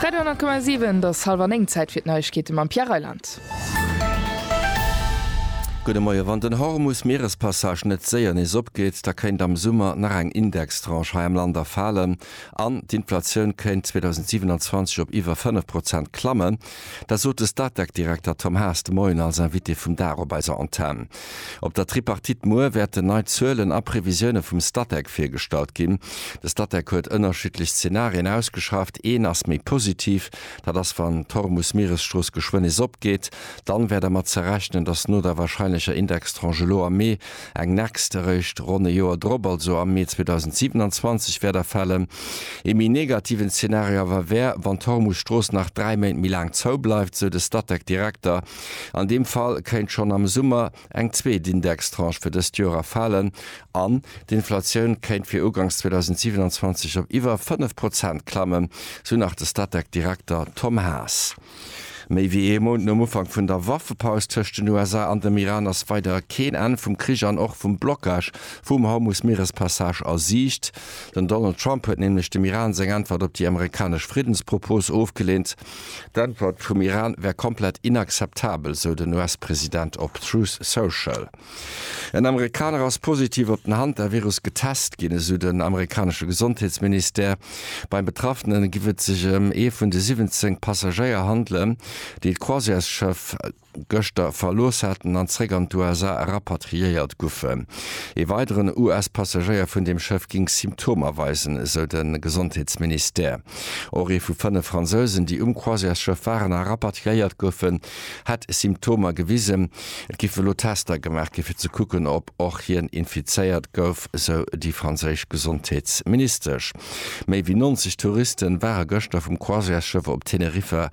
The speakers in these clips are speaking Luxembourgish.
Radio 10,7 Et ass hallef an 9, Zäit fir d'Neiegkeete mam Pierre Reyland. Gudde Moie, Wann den Hormus Mierespassage net séier nees opgeet, da kéint am Summer nach eng Indextranche hei am Land erfalen an d'Inflatioun kéint 2027 op iwwer 5 Prozent klammen. Dat sot de Statec-Direkter Tom Haas de Moien als Invité vum Dag op eiser Antenn. Op der Tripartite muer wäerten nei Zuelen a Previsioune vum Statec virgestallt ginn. De Statec huet ënnerschiddlech Zenarien ausgeschafft. Een ass méi positiv, dat ass wann d'Hormus-Mieresstrooss geschwënn nees opgeet. Dann wär dermat ze rechnen, datt no der warscheinlecher Indextranche elo am Mee eng next eréischt ronn e Joer drop, also am Mee 2027 wäert erfälen. Ee méi negativen Zenario awer wär, wann d'Hormus-Strooss nach dräi Méint méi laang zoubleift, sou de Statec-Direkter. An deem Fall kéint schonn am Summer eng zweet Indextranche fir dëst Joer erfalen an d'Inflatioun kéint fir ugangs 2027 op iwwer 5 Prozent klammen, sou nach de Statec-Direkter Tom Haas. Méi wéi ee Mount nom Ufank vun der Waffepaus tëscht den USA an dem Iran ass weider keen Enn vum Krich an och vum Blockage vum Hormus-Mierespassage a Siicht. Den Donald Trump huet nämlech dem Iran seng Äntwert op déi amerikanesch Friddenspropos ofgeleent. D'Äntwert vum Iran wär komplett inakzeptabel, sou den US-President op Truth Social. En Amerikaner ass positiv op den Hantavirus getest ginn, esou den amerikanesche Gesondheetsministère. Beim Betraffene giff et sech ëm ee vun de 17 Passagéier handelen, déi d'Croisièresschëff. gëschter verlooss haten an zréck an d'USA rapatriéiert guffen. Ee weideren US-Passagéier vun deem Schëff géing Symptomer weisen, esou de Gesondheetsministère. Och ee vu fënnef Fransousen, déi um Croisièresschëff waren a rapatriéiert goufen, hätt Symptomer gewisen. Et géifen elo Tester gemaach gi fir ze kucken, ob och hien infizéiert gouf, esou déi franséisch Gesondheetsministesch. Méi wéi 90 Touriste ware gëschter vum Croisièresschëff op Teneriffa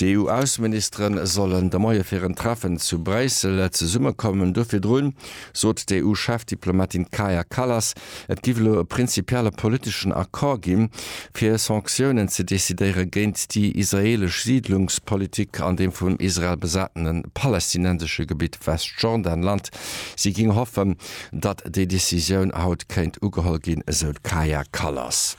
Déi EU-Ausseministere sollen de Moie fir en Treffen zu Bréissel zesummekommen. Do virdrun sot d'EU-Chefdiplomatin Kaja Kallas, et giff elo e prinzipielle politeschen Accord ginn, fir Sanktiounen ze decidéiere géint déi israeelesch Siidlungspolitik an deem vun Israel besatene palästinensesche Gebitt Westjordanland. Si géing hoffen, datt déi Decisioun haut kéint ugeholl ginn, esou d'Kaja Kallas.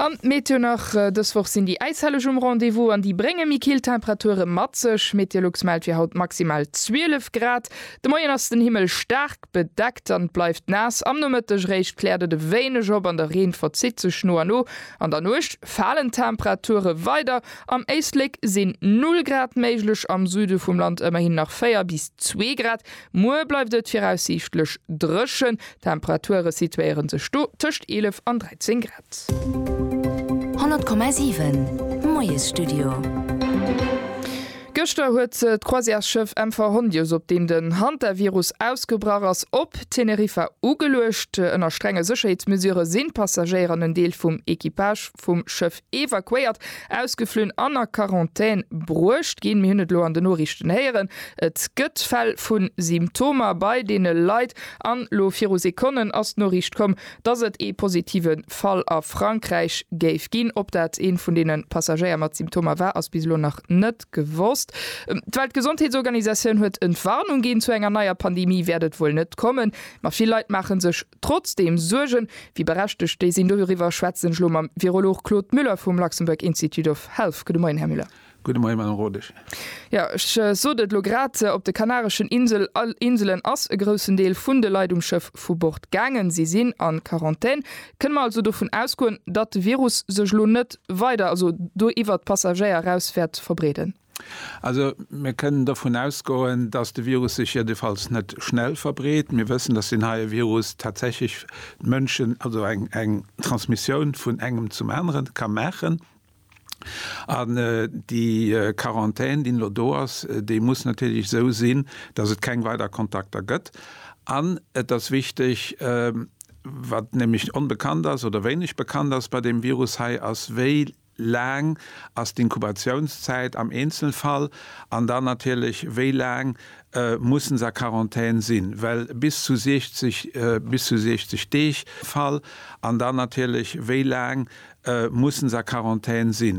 An d'Meteo nach, Dës Woch sinn déi Äishelleg um Rendez-vous an déi brénge méi kill Temperature mat sech. Meteolux mellt fir haut maximal 12 Grad. De Moien ass den Himmel staark bedeckt an et bleift naass. Am Nomëtteg réischt kläert et e wéineg op an de Reen verzitt sech no a no. An der Nuecht falen d'Temperature weider. Am Éislek sinn 0 Grad méiglech, am Süde vum Land ëmmerhin nach 4 bis 2 Grad. Muer bleift et viraussiichtlech dréchen. D'Temperature situéiere sech do tëscht 11 an 13 Grad. 100,7 Moiesstudio. Gëschter huet d'Croisièresschëff MV Hondius, op deem den Hantavirus ausgebrach ass, op Teneriffa ugeluecht. Ënner strenge Sécherheetsmesurë sinn d'Passagéier an en Deel vum Equipage vum Schëff evakuéiert, ausgeflunn an a Quarantän bruecht ginn. Mir hunn et elo an den Noriichten héieren, et gëtt Fäll vu Symptomer bei deene Leit. An elo viru Sekonnen ass d'Noriicht komm, dass et ee positive Fall a Frankräich géif ginn. Ob dat ee vun deene Passagéier mat Symptomer war, ass bis elo nach net gewosst. D'Weltgesondheetsorganisatioun huet Entwarnung ginn, Zu enger neier Pandemie wäert et wuel net kommen, ma vill Leit maache sech Trotzdeem suergen, wéi berechtegt déi sinn, doriwwer schwätzen ech elo mam Virolog Claude Müller vum Luxembourg Institute of Health. Gudde Moien, Här Müller. Gudde Moien, Madame Rodesch. Jo, ech sot et elo grad, op de kanareschen Insel, Inselen ass e groussen Deel vun de Leit um Schëff vu Bord gaangen. Si sinn a Quarantän. Kënne mer also dovun ausgoen, datt de Virus sech elo net weider, also do iwwert d'Passagéier eraus wäert verbreeden? Also mir kënnen dovun ausgoen, dass de Virus sech jiddefalls net schnell verbreet. Mir wëssen, dass deen heie Virus tatsächlech d'Mënschen, also eng Transmissioun vun engem zum aneren ka maachen. An déi Quarantän, déi elo do ass, déi muss natierlech esou sinn, dass et keng weider Kontakter gëtt. An et ass wichteg, wat nämlech onbekannt ass oder wéineg bekannt ass bei deem Virus hei, ass wéi, laang ass d'Inkubatiounszäit am Eenzelfall an dann natierlech wéi laang mussen se a Quarantän sinn, well bis zu 60 bis zu 60 Deeg am Fall an dann natierlech wéi laang mussen se a Quarantän sinn.